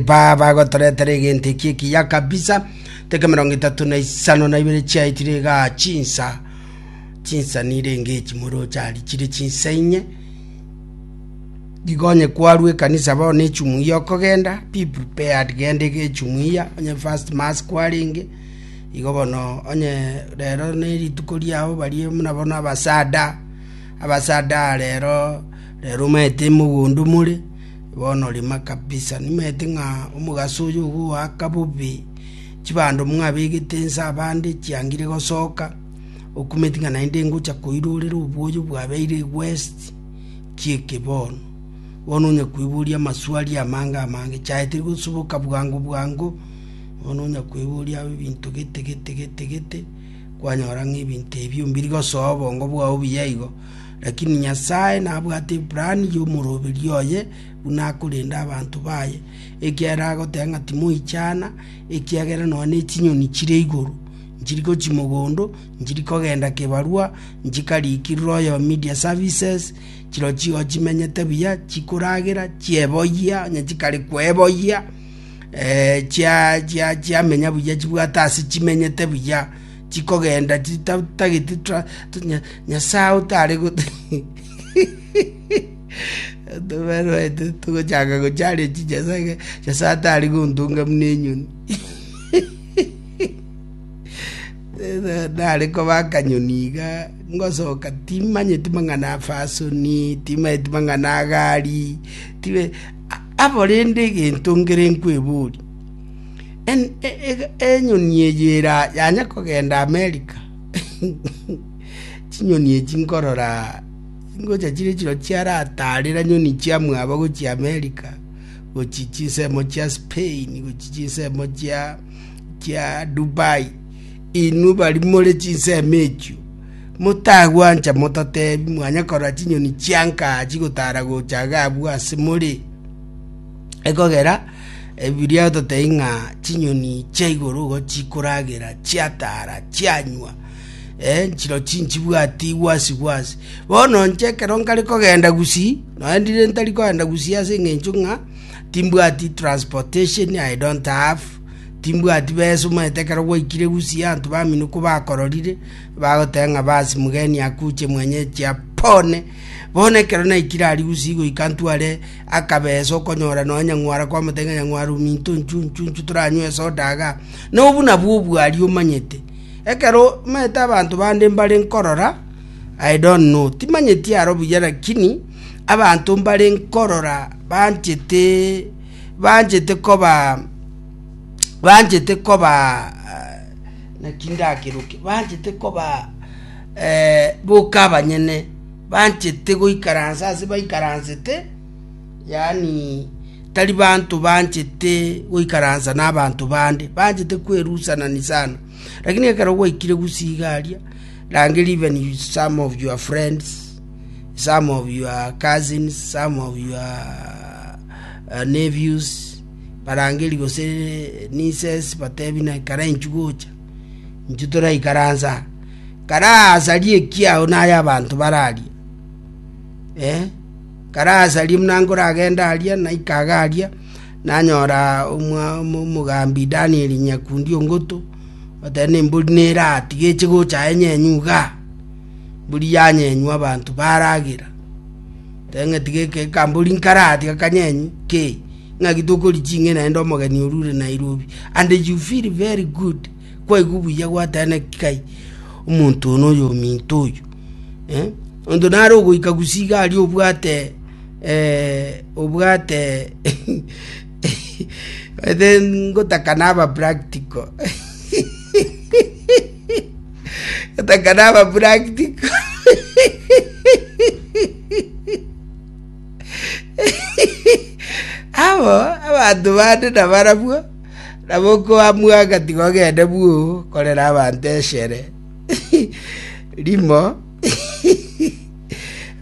Baba agotoretera egento eki ekiya kabisa, teke mirongo etato na isano na ibere chiaetire iga chinsa chinsa nire enge echi moroche ari chire chinsa inye gigonye kwaru ekanisa bao ne echumu iya okogenda be prepared genda ege echumu iya onye first mass kwarenge igo bono onye rero ne rituko riao barie muna bono abasada abasada rero rero omanyete mogondo more Bono rima kabisa nimanyete ng'a omogaso oyo ogoaka bobe chibando mwabegete inse abande chiangire gosoka, okumeti ng'a naende ngocha koira orere obwoyo bwabeire west kieke bono. Bono onya koiboria amaswali amange amange chiaete gosoboka bwango bwango bono onya koiboria ebinto gete gete gete gete kwanyora ng'a ebinto ebio mbiri gosoa obongo bwao buya igo. Lakini Nyasae nabwate eplani y'omoroberio oye buna akorenda abanto baye, ekiagera agoteba ng'a timoichana, ekiagera nonya nechinyoni chire igoro nchiri gochia mogondo, nchiri kogenda kebarua, nchikarikirire oyo media services, chirochio igo chimenyete buya, chikoragera, chieboyia, onye chikare kweboyia, eh, chia- chia- chiamenya buya chibwate ase chimenyete buya. chikogenda chitatageti Nyasae otare tobaruete togochaka gocharia chinyasae iga Nyasae atari gontunga buna enyoni nare koba akanyoni iga ngosoka timanyeti mang'ana afasoni timanyeti mang'ana agari tibe abo rende egento nkere nkwebori Enyoni eye era yanya kogenda Amerika, chinyoni echi nkorora chingocha chire chirobia chiarataarera nyoni chia mwabo gochia Amerika, gochia chinsemo chia Spain, gochia chinsemo chia chia Dubai. Inwe bari more chinsemo echio, motagwancha mototebi mwanya korora chinyoni chianka chigotara gocha iga abwo ase more, ekogera. Ebiria totebi ng'a chinyoni chia igoro igo chikoragera, chiataara, chianywa, eh, nchirochio inchibwati gwasi gwasi. Bono inche ekero nkare kogenda gusii, nonya ndire ntari kogenda gusii ase eng'encho ng'a timbwati transportation, I don't have, timbwati besa omanyete ekero gwaikire gusii abanto baminikwa bakororire, bagoteba ng'a bas mgeni akuche mwenye chia pone. Bono ekero naikire aria gusii goika ntware. Akabesa okonyora nonya nyang'wara kwamotebia ng'a nyang'wara ominto nchu nchu nchu toranywe esoda iga. Na obwo nabwo obwari omanyete. Ekero omanyete abanto bande mbare nkorora, I don't know, timanyeti aro buya lakini abanto mbare nkorora banchete banchete koba banchete koba naki ndakeruke, banchete koba boka abanyene. Banchete goikaransa ase baikaransete, yaani tari banto banchete goikaransa n'abanto bande, banchete kwerusanani sana. Lakini ekero gwaikire gusii iga aria, rangeria even you- some of your friends, some of your cousins, some of your eh, nephews, barangerie gose nieces batebi na ekero enchuo gocha, Intwe toraikaransa aa, karasarie ekiao na ay'abanto bararie. Ee, karasarie buna nkoragenda aria, naika iga aria, nanyora omogambi Danieli nyakundi o ngoto, oteba embori neratige eche gocha aye nyenywe igaa, embori yanyenywa abanto baragera. Eng'iti geke ekambori nkare ati akanyenyi ke ng'aki tokori ching'e naende omogeni oru ore Nairobi and you feel very good kwaigwa buya gwatena ki kai omonto one oyo ominto oyo eh onto nare ogoika gusii iga aria obwate eh obwate then ngotaka naba practical Gotaka naba practical. Abo abanto bande nabarabwo, nabo okoamua agatiga ogende bwu korera abanto eshere rimo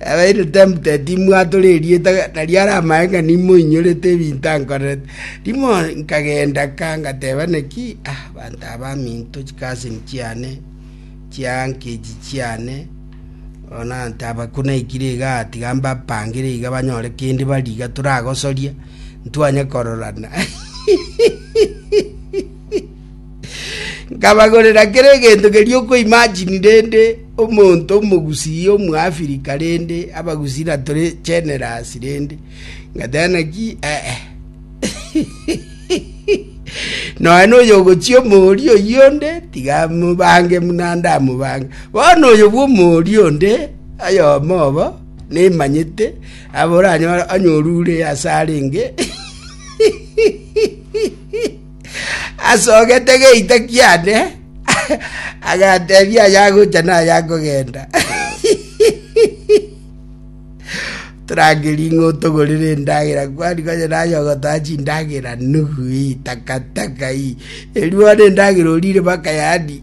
Nabeire tempted, timwatora erieta, na riare amache ng'a nimoinyorete ebinto ankorerete. Rimo nkagenda ka ngateba naki, ah, abanto aba baminto, chicousin chiane, chiuncle echi chiane, bono nantaba ko naikire iga tiga mbapangere iga banyore kende barie iga toragosoria, ntwanye kororana. Nkabagorera kera egento keria okoimagine rende omonto omogusii omoafirika rende abagusii na tore generous rende ngateba naki eh, eh. noe noyo ogochia omori oyio onde tiga mobange muna ndamobange bono oyo bwa omori onde oyomo obo nemanyete aboranyore anyorure ase arenge asogete geita kiane, agatebia ayagocha na ayakogenda. Torangerie ng'o togorere endagera kwani konye naye ogotoa chindagera nugu ii takataka ii eriono endagera orire baka yani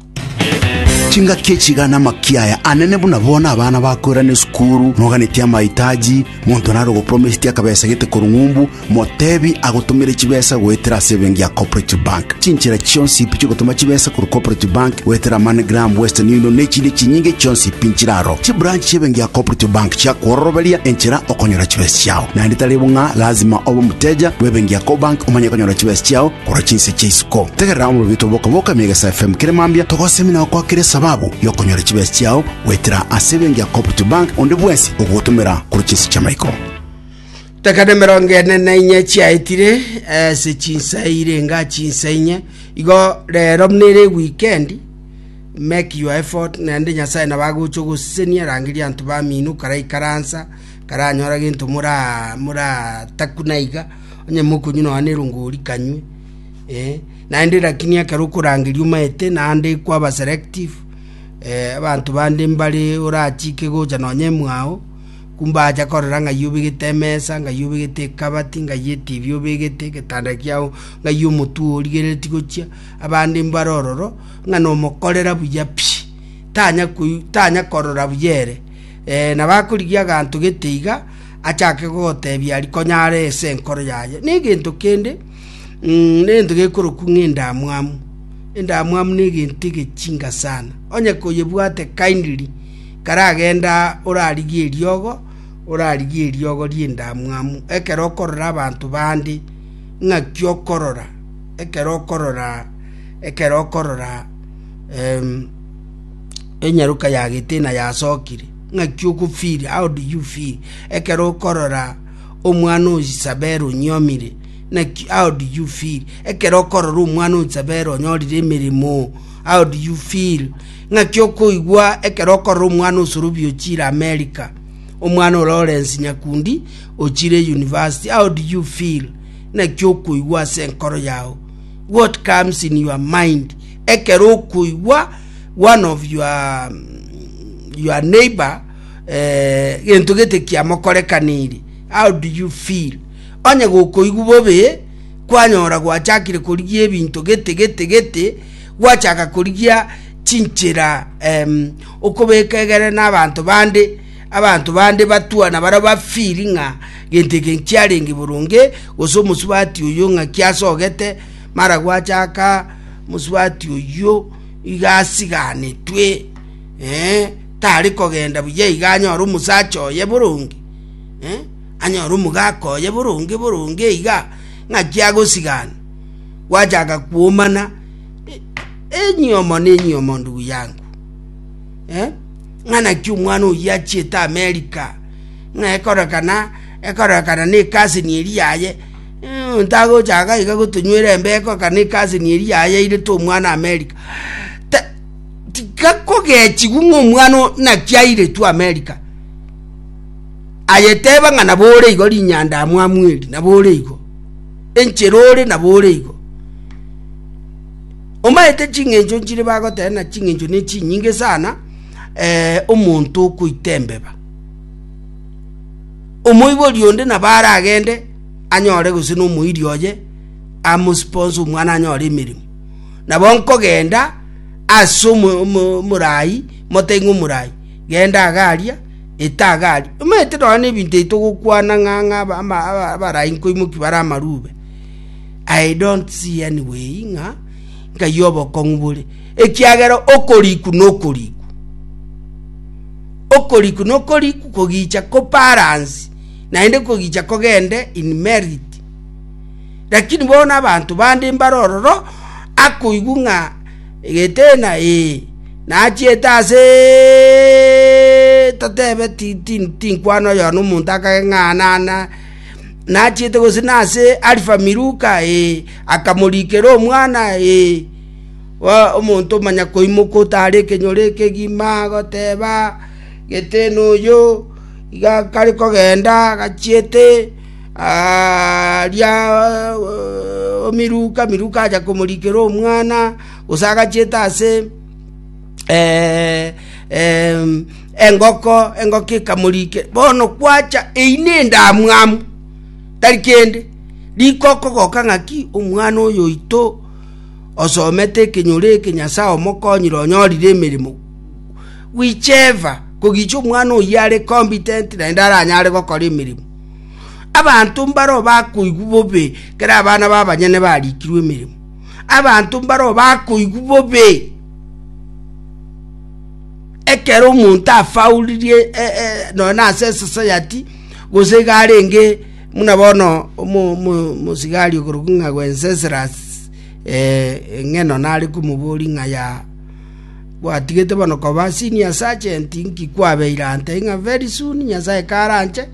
Chingaki echi iga namakia aya anene buna bono abana bakoirana esukuru, noganetie amahitaji, monto nare ogopromisetie akabesa gete korwa ng'umbu, motebi agotomere chibesa goetera ase ebenki ya Cooperative Bank. Chinchera chionsi ipi chiogotoma chibesa korwa Cooperative Bank goetera MoneyGram, Western Union na echinde chinyinge chionsi ipi nchire aro. Chibranch chi'ebenki ya Cooperative Bank chiakwororoberia enchera okonyora chibesa chiao. Naende tari bo ng'a lazima obe omoteja bw'ebenki ya Cobank omanye konyora chibesa chiao, Korwa chinse chia isiko, tegerera omobibito bw'oka bw'oka mia egesa FM kere mambia togosemi na gokwakera esababu y'okonyora chibesa chiao goetera ase ebenki ya Cooperative Bank onde bwensi ogogotomera korwa chinse chia maiko. Teka nemerongo ene na inye chiaetire ase chinsa eire enga chinsa inye igo rero buna ere weekend make your effort naende nyasaye nabo agocha ogosesenia rangeria anto bamino karaikaransa karanyora gento mora moratakuna iga Onye mokonywa nonya nerongo orikanywe, eh, naende lakini ekero okorangeria omaete naende kwaba selective, eh, abanto bande mbare orachike gocha nonya emwao, kumbacha korora ng'ai obegete emesa, ng'ai obegete ekabati, ng'ai etibi obegete, egetanda kiago, ng'ai omotwe ogo origereretie gochia, abande mbare ororo, ng'a nomokorera buya pi, tanya koi tanya korora buya ere. Eh nabo akorigia aganto gete iga. achake gogoteebia aria konyare ase enkoro yaye, negento kende, negento gekorokwa ng'endamwamu. Endamwamu negento egechinga sana. Onye koyebwate kindly, karagenda orarigie eriogo, orarigie eriogo ri'endamwamu. Ekero okorora abanto bande, ng'aki okorora, ekero okorora, ekero okorora enyaroka yagete na yasokire. Ng'aki ogofiiri? How do you feel? Ekero okorora omwana o Isabel onyiomire, naki, how do you feel? Ekero okorora omwana o Isabel onyorire emeremo, how do you feel? Ng'aki okoigwa ekero okorora omwana o Sorobi ochire America, omwana o Lawrence Nyakundi ochire university, how do you feel? Naki okoigwa ase enkoro yao. What comes in your mind? Ekero okoigwa one of your, your neighbor eh, gento gete kiamokorekaniri how do you feel onye gokoigwa bobe kwanyora gwachakire korigia ebinto gete gete gete gwachaka korigia chinchera em, okobeka egere na abanto bande abanto bande batwana bara bafiri ng'a gento eke nkiarenge boronge gose omosubati oyo ng'a kiasogete mara gwachaka Mosubati oyio iga asiganetwe, ee, tari kogenda buya iga anyore omosacha oye boronge, ee, anyore omogaka oye boronge boronge iga, ng'aki agosigana? Gwachaka kwomana enyomo na enyomo ndugu yangu, ee, ng'a naki omwana oyio achiete Amerika, ng'a ekororekana, ekororekana na ecousin eria yaye. Ntagochaka iga gotonywera embeko ekana ekaseni eria yayairete omwana Amerika. Ta- Tiga kogechigwa ng'a omwana o- naki airetwe Amerika. Ayeteba ng'a nabo ore igo rinyanda amwamu eri, nabo ore igo. Enchera ore nabo ore igo. Omaete ching'encho nchire bagoteba na ching'encho ne chinyinge sana eh, omonto okoita embeba. Omoibori onde nabo are agende anyore gose nomoiri oye amosponse omwana anyore emeremo. Nabo nkogenda ase omorai, moteng'e omorai, genda agaria, eta agaria. Omanyete nonye na ebinto ebi togokwana ng'a ng'a abarai nkoimokia bare amarube. I don't see any way ng'a nkaiyo obokong'u bore, ekiagera okoriku nokoriku. Okoriku nokoriku kogicha koparansi naende kogicha kogende in merit. Lakini bono abanto bande mbare ororo akoigwa ng'a egetena ee nachiete ase totebe tinkwano oyono omonto akage ng'a nana nachiete gose nase Alifa Miluka ee akamorikera omwana ee. omonto omonyakoimoka otaare ekenyoro ekegima, agoteeba, Gete noyo iga kare kogenda agachiete, aaria omiruka, miruka acha komorikera omwana, gose agachiete ase engoko, engoko ekamorikera. Bono kwacha eyio na endamwamu tari kende, riko okogoka ng'aki, omwana oyo oito. osomete ekenyoro eke Nyasae omokonyire onyorire emeremo, whichever, kogicha omwana oyio are competent naende aranyare gokora emeremo. Abanto mbaro bakoigwa bobe kera abana babanyene barikirwe emeremo. Abanto mbaro bakoigwa bobe ekero omonto afauririe e, e, noe nase esosayati gose iga arenge muna bono omo- omo- omosigari ogorokwa ng'a Wenceslus Ee, in'geno nare komoboria ng'a ya gwatigete bono koba senior sergeant inki kwabeire ante ng'a very soon Nyasae karanche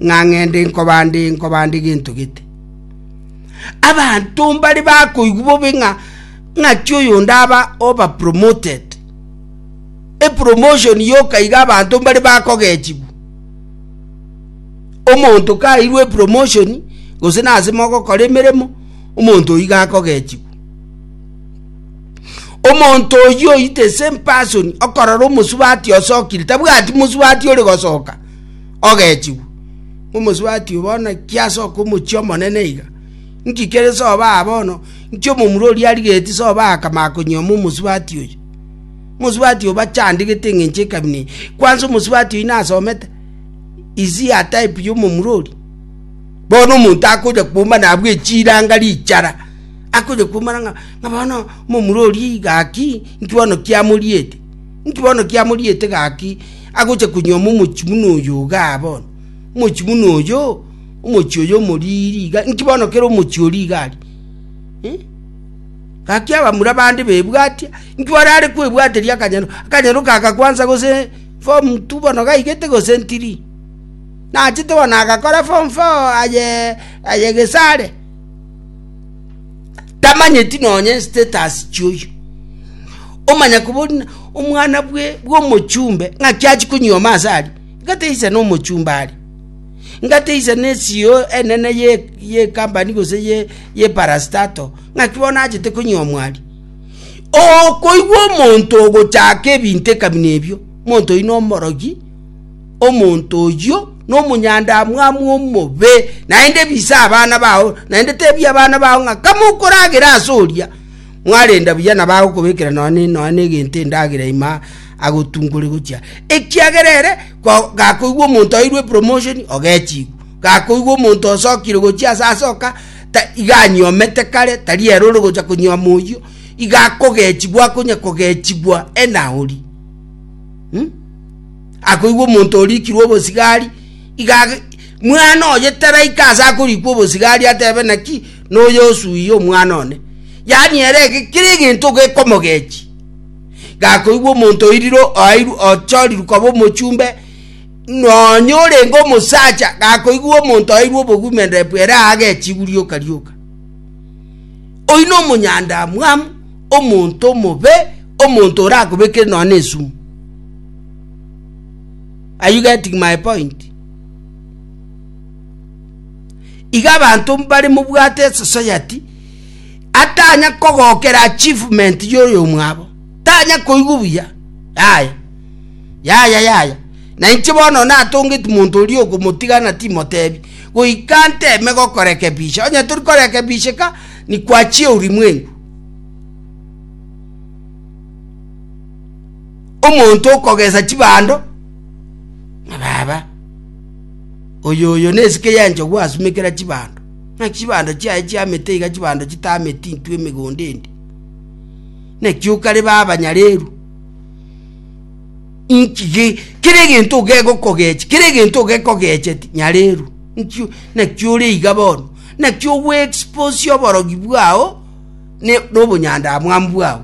ng'a ng'ende nkobande nkobande gento gete. Abanto mbare bakoigwa bobe ng'a ng'aki oyo ndaba over promoted. E promotion yoka iga abanto mbare bakogechigwa. Omonto kairwe promotion gose nase mogokora emeremo omonto oyio iga akogechigwa. Omonto oyio oyite ase mpasoni okorora omosubati osokire, tabwati mosubati ore gosoka ogechigwa. Omosubati oyo bono kiasoka omochie omonene iga. Nki kere soba bono, nki omomura oria arigeti soba akama konyoma omosubati oyo. Omosubati oyo bachandegete eng'encho ekabina eye. Kwanza omosubati oyo nasomete, is he a type ya omomura oria? Bono omonto akoja kwomba nabwo echiranga richara, akoja kwomana ng'a ng'a bono momura oria iga gaki, inki bono kiamoriete? Inki bono kiamoriete gaki? Agocha konyuoma omochi buna oyo iga bono, omochi buna oyo, omochi oyo omoriri iga, inki bono kere omochi oria iga aria? Eh? Gaki abamura bande bebwatia, inki bono are kwebwateria akanyero, akanyero kaga kwansa gose form two bono gaigete gose ntiri. Nachete bono agakora form four aye aye Gesare. Tamanyeti nonye status chioyo. Omanya kubona omwana bwe bw'omochumbe ng'aki achi konyioma ase ari. Ngateisa n'omochumbe ari. Ngateisa ne CEO enene ye ye company gose ye ye parastato ng'aki bono achete konyiomwa ari. Okoigwa omonto ogochaka ebinto ekabina ebio, omonto oyio nomorogi Omonto oyio nomonyandamwamu omobe, naende bisa abana bao, naende teebia abana bao ng'a kama okoragera ase oria, mwarenda buya nabo agokobekera nonya nonya negento endagera ime agotungore gochia, ekiagera ere gakoigwa omonto airwe epromotion ogechigwa, gakoigwa omonto osokire gochia ase asoka iga anyomete kare tari ere ore gocha konyoma oyio, iga akogechigwa akonya kogechigwa ena oria. Akoigwa omonto orikirwe obosigari, iga mwana oye taraika ase akorikwa obosigari atebe naki noyo osuiye omwana one, yaani ere kera egento gekomogechi. Gakoigwa omonto oiriro oairu ochoriru koba omochumbe, nonya orenge omosacha gakoigwa omonto oairwe obogumenderepu ere agechigwa rioka rioka oyi na omonyandamwamu omonto omobe omonto orakobekere nonya na esumu Are you getting my point? Iga abanto mbare mobwate esociety atanya kogokera achievement yoyo mwabo tanya koigwa buya yaya yaya yaya na inche bono natongeti monto oria okomotigana timotebi goika nteme gokorekebisha onye tori korekebisheka nikwachia ulimwengu Omonto okogesa chibando na baba, oyo oyo nesike y'enchogu asumekera chibando, naki chibando chiaye chiamete iga chibando chitameti intwe emegondo endi. Naki okare baba nyareru nkige kere egento ogegokogechi kere egento ogekogecheti nyareru nkio naki ore iga bono naki ogwe expose oborogi bwao ne nobonyanda amwambwao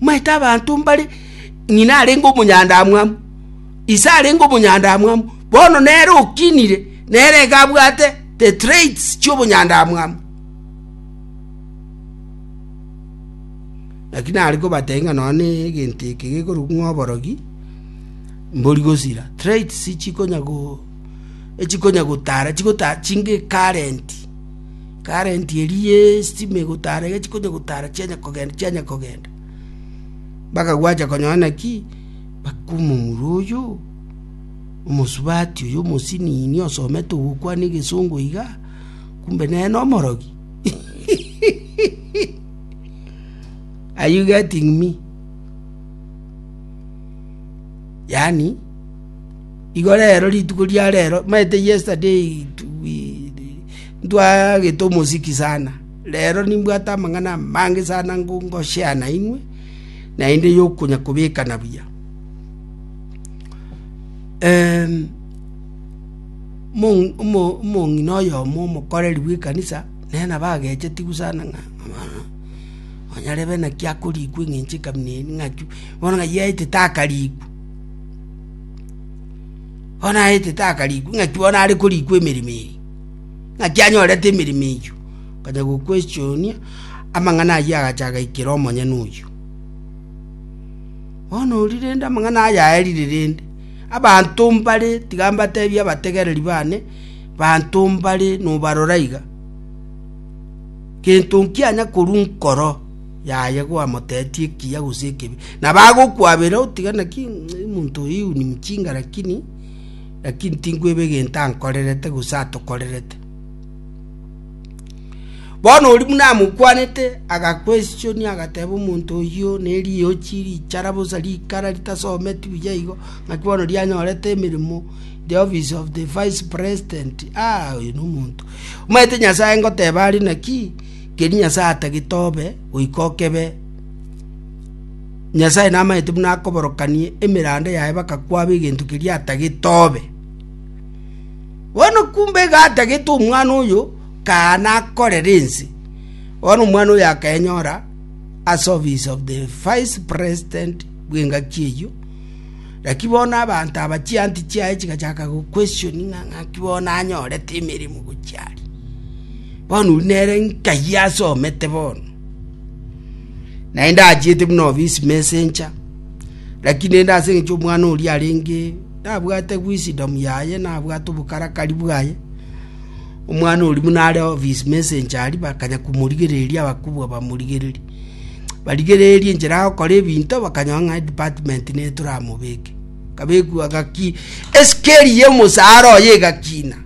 Maete abanto mbare ng'ina arenge omonyandamwamu, ise arenge omonyandamwamu, bono nere okinire, nere iga abwate the traits chi'obonyandamwamu. Naki nare kobatebia ng'a nonya na egento eke gekorokwa ng'a oborogi, mbori gosira, traits chikonya go, echikonya gotara, chigotara chinge current. karenti eria y'estima egotara egechia konya gotara chianya kogenda chianya kogenda, mpaka gwacha konyora naki, mpaka omomura oyo, omosubati oyo omosinini osomete ogokwana egesongo iga, kumbe nere na omorogi. Are you getting me? Yaani. Igo rero, rituko ria rero, maete yesterday, ntwagete omosiki sana, rero nimbwate amang'ana amange sana ngo ngo share nainwe, naende yokonya kobekana buya. mong omo omong'ina oyomo omokoreri bw'ekanisa, nere nabo agechetigwa sana ng'a onye arebe naki akorikwa eng'encho ekamina eri ng'aki, bono ng'a yaetete akarikwa. Bono aete takarikwa, ng'aki bono are korikwa emeremo eye? Ng'aki anyorete emeremo eyio? Akanya gokwechoonia amang'ana ayio agacha agaikera omonyene oyio. Bono oria rende amang'ana aya aerire rende, abanto mbare tiga mbatebie abategereri bane, banto mbare nobarora iga, gento nkianya korwa nkoro. yaye gwamoteetie ekiya gose ekebi, na bagokwabera otiga naki omonto oyo iuni mchinga lakini lakini tinkweba egento ankorerete gose atokorerete. Bono oria buna amokwanete agaquestionia agateba omonto oyio neriochi richara bosa rikara ritasometi buya igo naki bono rianyorete emeremo the office of the vice president aah oyo nomonto omanyete Nyasaye ngoteba are naki. Keri Nyasae atagete obe goika okebe. Nyasae namanyete buna akoborokanie emeranda yaye baka kwabe egento keria atagete obe. Bono kumbe iga atagete omwana oyo kaana akorere ense. Bono omwana oyo akaenyora as office of the vice president bw'engaki eyio Naki bono abanto aba chianti chiaye chigachaka goquestioni ng'a ng'aki bono anyorete emeremo gochia aria. Bono oria nere nkayi asomete bono. Naende ndachiete buna office messenger, lakini naende ase eng'encho omwana oria arenge nabwate wisdom yaye nabwate obokarakari bwaye, omwana oria buna are office messenger aria bakanya komorigereria abakubwa bamorigereria. barigererie enchera ya gokora ebinto bakanyora ng'a department nigo toramobeke kabekwa gaki esikeri ya omosaara oye egakina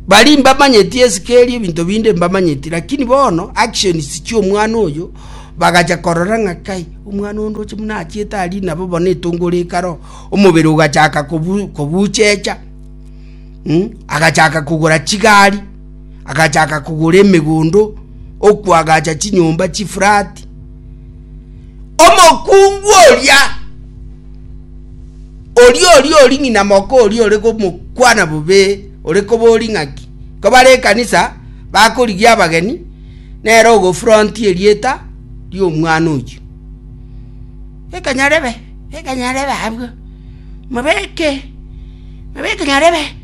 bari mbamanyeti esikeri ebinto binde mbamanyeti lakini bono actions chi'omwana oyo bagacha korora ng'a kai omwana onde oche buna achiete aria nabo bono etongo rikaro omobere ogachaka kobu kobuchecha mm agachaka kogora chigari. agachaka kogora emegondo, okoagacha chinyomba chifurati. Omokungu oria oria oria ori ng'ina moko oria ore komokwana bobe ore kobori ng'aki kobare ekanisa bakorigia abageni nere ogofronti erieta ri'omwana oyio ekanyarebe ekanyarebe abwo mabeke mabeke nyarebe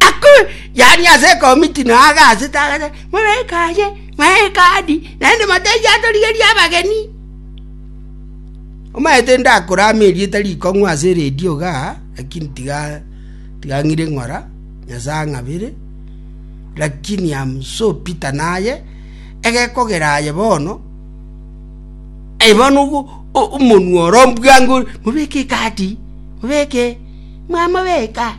Ako, yaani ase ekomiti na aa agasete agachora, Mwaika aye, mwaika aadi, naende motaiyo atorigerie abageni. Omanyete ndakorame erieta rikong'u ase eredio iga, lakini tiga tiga ng'ire ng'ora, Nyasae ang'abere, lakini am so bitter naye, egekogera aye bono, aye bono ogo o- omonwe oro mbwango, mobeke ekaadi, mobeke, mwamobeka.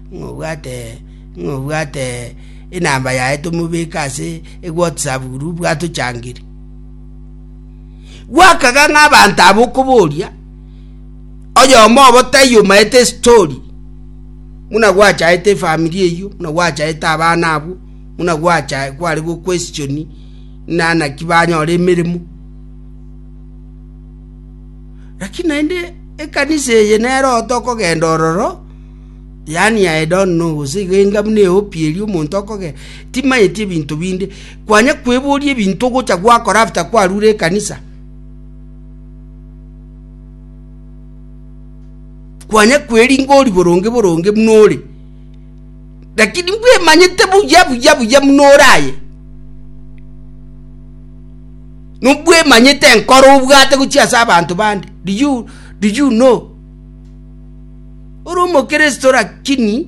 Ng'a obwate enamba yaye tomobeke ase eWhatsApp buru bwatochangire. Gwakaga ng'a abanto abo okoboria, oyomo obo taiyo omaete estori, buna gwachaete efamiri eywo, buna gwachaete abana abwo, buna gwachaete kware goquestioni ng'a naki banyore emeremo. Lakini naende ekanisa eye nero otokogenda ororo. yaani ya Edoni nobosa iga enga buna ehopi eria omonto okogera, timanyeti ebinto binde, kwanya kweboria ebinto ogocha gwakora after kwarure ekanisa. Kwanya kweringa ori boronge boronge buna ore. Lakini mbwemanyete buya buya buya buna ore aye. Nubwemanyete enkoro obwate gochia ase abanto bande. Do you, do you know? Ore omokristo rakini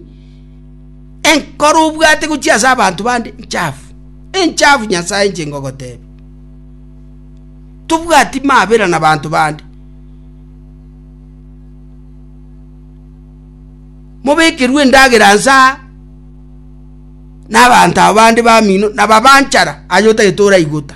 enkoro obwate gochia ase abanto bande nchafu enchafu nyasae inche ngogotebe tobwati mabera na banto bande mobekerwe endagera nsa nabanto abo bande bamino nababanchara aye otagete oraigota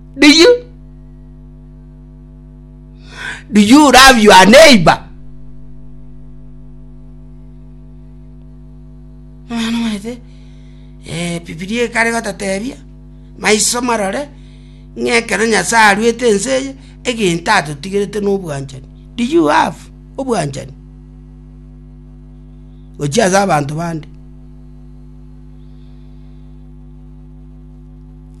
Do you do you love your neighbor? Omwana omanyete eh, Bibilia ekare gotatebia maiso marore ng'a ekero Nyasae aruete ense eye egento atotigerete nobwanchani. Do you have obwanchani? Gochia ase abanto bande.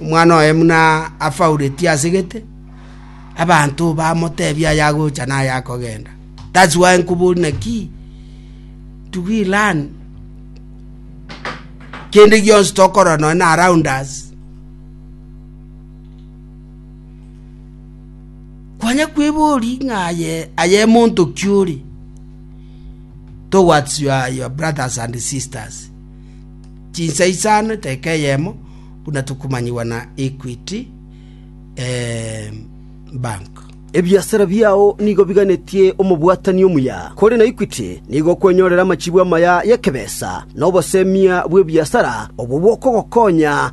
Omwana oye buna afauretie ase gete, abanto bamoteebie ayagocha na ayakogenda. That's why nkobori naki do we learn kende gionsi tokorora nonya na around us kwanya kwebori ng'a aye aye monto ki ore towards your, your brothers and sisters Chinsa isano eteeka eyemo, buna tokomanyigwa na Equity Bank. Ebiasara biao nigo biganetie omobwatani omuya, korende Equity nigo okwenyorera amachibu amaya y'ekebesa na obosemia bw'ebiasara obwo bokogokonya.